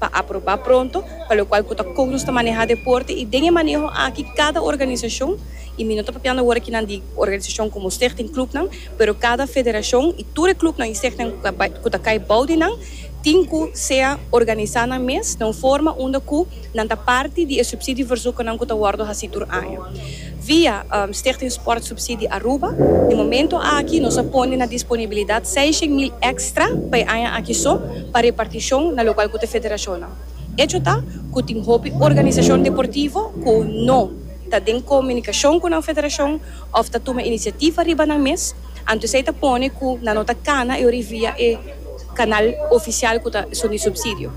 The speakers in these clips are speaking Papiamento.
pa aprobá pronto, pa lokual ku ta kon nos ta maneha deporte i den e maneho aki kada organisashon, i mi no ta papiando awor aki nan di organisashon komo stichting klupnan, pero kada federashon i tur e klupnan i stichtingnan ku ta bai ku ta kai bou di nan tin ku sea organisá nan mes na un forma unda ku nan ta parti di e supsidio verzoeknan ku ta wòrdu hasi tur aña. Via Stichting Sport Subsidie Aruba, di momento aki nos a pone na disponibilidad seishen mil extra pa e aña aki so pa reparticion na locual cu ta federacionnan. Echo ta cu tin hopi organisacion deportivo cu no ta den comunicacion cu nan federacion of ta tuma iniciativa riba nan mes, anto esey ta pone cu nan no ta cana e ori via e canal oficial cu ta esun di subsidio.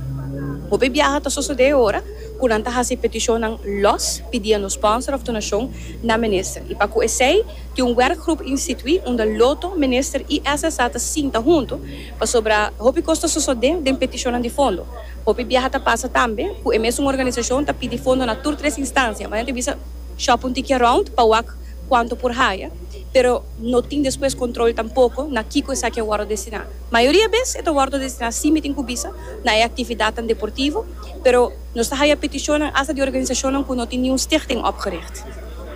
Hopi biaha ta sosode e ora. cu nan ta haci peticionnan los pidiendo sponsor of donacion na Minister. Y pa cu esey tin un werkgroep institui unda Lotto, Minister y SSA ta sinta hunto, pasobra hopi cos ta sosode den peticionnan di fondo. Hopi biaha ta pasa tambe cu e mesun organisacion ta pidi fondo na tur tres instancia, ma nan ta bisa shop un tiki around pa wak cuanto por haya, pero no tin despues control tampoco na kico esaki a wordo destina. Mayoria bes e ta wordo destina, así mi tin cu bisa, na e actividadnan deportivo, pero nos ta haya petishonnan asta di organisashonnan ku no tin niun stichting opgericht.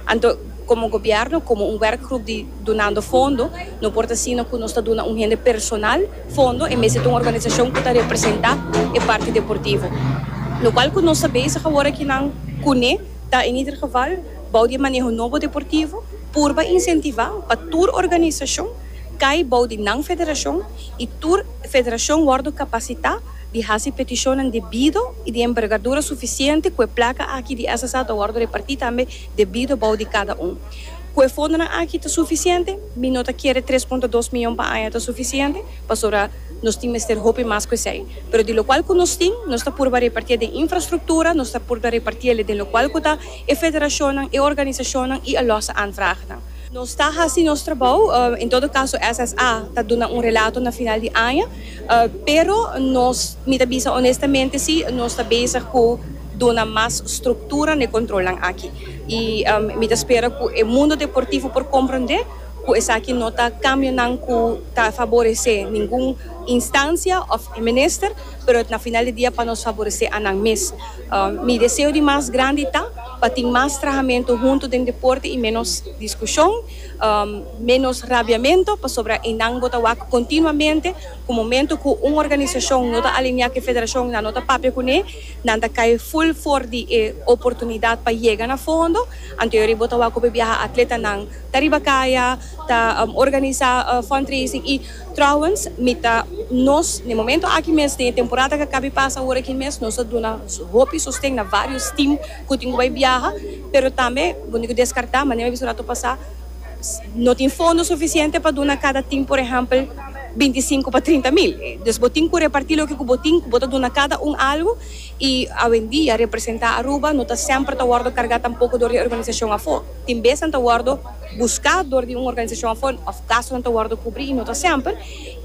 Anto, komo gobièrnu, komo un wèrkgrup di dunando fondo, no por ta asina ku nos ta duna un hende personal fondo en bes di ta un organisashon ku ta representá e parti deportivo, lokual ku nos ta bezig awor akinan kuné ta en ieder geval bou di e maneho nobo deportivo purba insentivá pa tur organisashon kai bou di nan federashon i tur federashon wòrdu kapasitá di hasi petishonnan debido i di enbergadura sufisiente ku e plaka aki di SSA ta wòrdu repartí tambe debido bou di kada un. Ku e fondonan aki ta sufisiente? Mi no ta kere tres punto dos mion pa aña ta sufisiente, pasobra nos tin mester hopi mas ku esei. Pero di lokual ku nos tin, nos ta purba repartié den infrastruktura, nos ta purba repartiele den lokual ku ta e federashonnan, e organisashonnan i e lòse aanvragenan. Nos ta hasi nos trabou. En todo kaso SSA ta duna un relato na final di aña. Pero nos, mi ta bisa onestamente si, nos ta bezig cu duna mas structura n'e controlnan aki. Y mi ta spera cu e mundo deportivo por comprende cu esaki no ta cambionan cu ta faborece ningun instancia of e minister, pero na final di dia pa nos faborece anan mes. Mi deseo di mas grandi ta pa tin mas trahamento hunto den deporte y menos discusion. Menos rabiamento, pasobra eynan bo ta wak continuamente cu momento cu un organisacion no ta alinea cu e federacion eynan no ta papia cune, nan ta cay full for di e oportunidad pa yega na fondo, anteori bo ta wak cu bo e biaha atletanan ta riba caya ta organiza fundraising y trouwens mi ta nos n'e momento aki mes den e temporada cu a caba y pasa awor aki mes nos a duna hopi sosten na varios team cu tin cu bay biaha. Pero tambe bo tin ku deskartá, manera mi a bisa un ratu pasá, no tin fondo sufisiente pa duna kada tin, por ehèmpel, binti i sinku pa trinta mil. Dus bo tin ku repartí loke ku bo tin, ku bo ta duna kada un algu, i awendia representá Aruba no ta semper ta wòrdu kargá tampoko dor di e organisashon afó. Tin bes nan ta wòrdu buská dor di un organisashon afó òf gastunan ta wòrdu kubrí i no ta semper.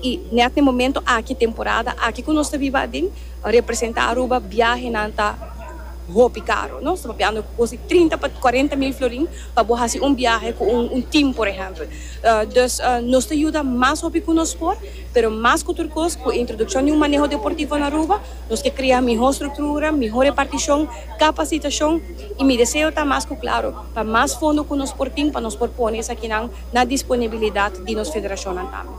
I nèt na e momentu aki, temporada aki ku nos ta biba aden, representá Aruba biahenan ta. hopi karo. Nos ta papiando ku kos di trinta pa kuarenta mil florin pa bo hasi un biahe ku un tim, por ehèmpel. Dus nos ta yuda mas hopi ku nos por, pero mas ku tur kos ku e introdukshon di un maneho deportivo na Aruba nos ke krea mihó struktura, mihó repartishon, kapasitashon i mi deseo ta mas ku klaro pa mas fondo ku nos por tin pa nos por pone esakinan na disponibilidat di nos federashonnan tambe.